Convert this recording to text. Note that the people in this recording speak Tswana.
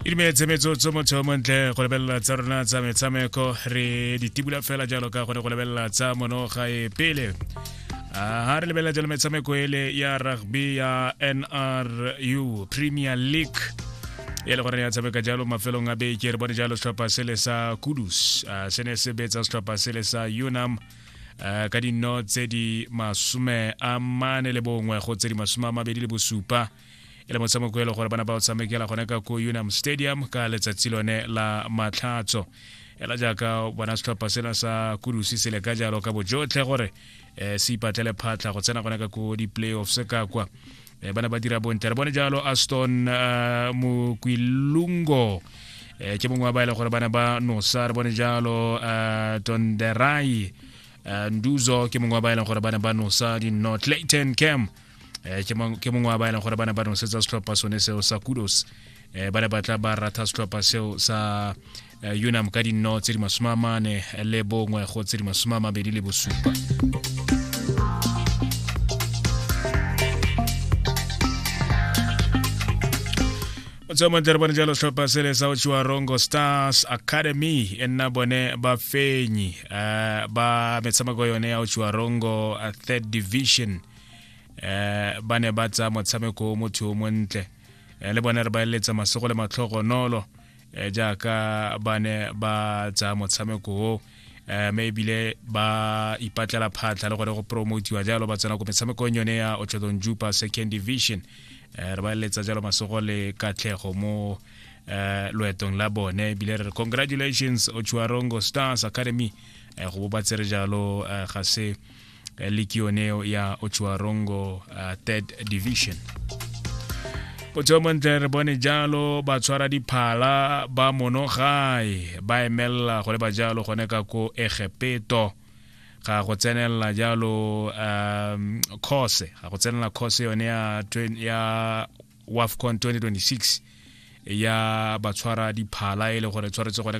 itumetse metsotso motho yo montle go lebelela tsa rona tsa metshameko re ditibula fela jalo ka gone go lebelela tsa monoga e pele ha re lebelela jalo metshameko ele ya rugby ya nru premier league e le gore ya tshameka jalo mafelong a beke re bone jalo setlhopha sele sa kudus se ne se betsa setlhopha sele sa unam ka dino tse di masome a mane le bongwe go tse di masome a mabedi le bosupa e le motsamokuelo gore bana ba o tshamekela gone ka ko unam stadium ka letsatsi lone la matlhatso ela jaaka bona setlhopha sena sa kudusi se le ka jalo ka bojotlhe gore um se ipatlele phatlha go tsena gone ka ko di-playoffs ka kwa um bana ba dira bontle re bone jalo aston uh, mokwilungo eh ke mongwe wa ba e gore bana ba nosa re bone jalo uh, tonderai uh, nduzo ke mongwe wa ba e gore bana ba nosa di-north clayton cam eh, ke mongwe wa ba e leng gore ba ne ba nosetsa setlhopha sone seo sa kudos um ba ne ba tla ba ratha setlhopha seo sa eh, unam ka dinno tse di masome a mane le bongwe go tse di masome a mabedi le bosupa motsamatere bone jalo tlhopha sele sa ochiwa rongo stars academy e nna bone ba fenyi uh, ba metshameko yone ya ochiwa rongo uh, third division eh ba ne ba tsa motshameko motho o montle eh, le bone re ba eletsa masogo le matlhogonolo eh, jaaka ba ne ba tsa motshameko o eh, mme ebile ba ipatlela phatlha le gore go promotiwa jalo ba tsena ko metshamekong yone ya otlhodong jupa second division eh, re ba eletsa jalo masogo le katlhego mo eh, loetong la bone ebile re re congratulations ochuarongo stars academy eh, go bo ba tsere jalo eh, ga se eh, likio eneo ya Ochuarongo uh, third division potshomontle re bone jalo ba tshwara diphala ba monogae ba emelela go le ba jalo gone ka ko egepeto ga go tsenelela jalo um course ga go tsenelela course yone ya twen- ya wafcon 2026 ya batshwara diphala e le gore tshwaretse gone ka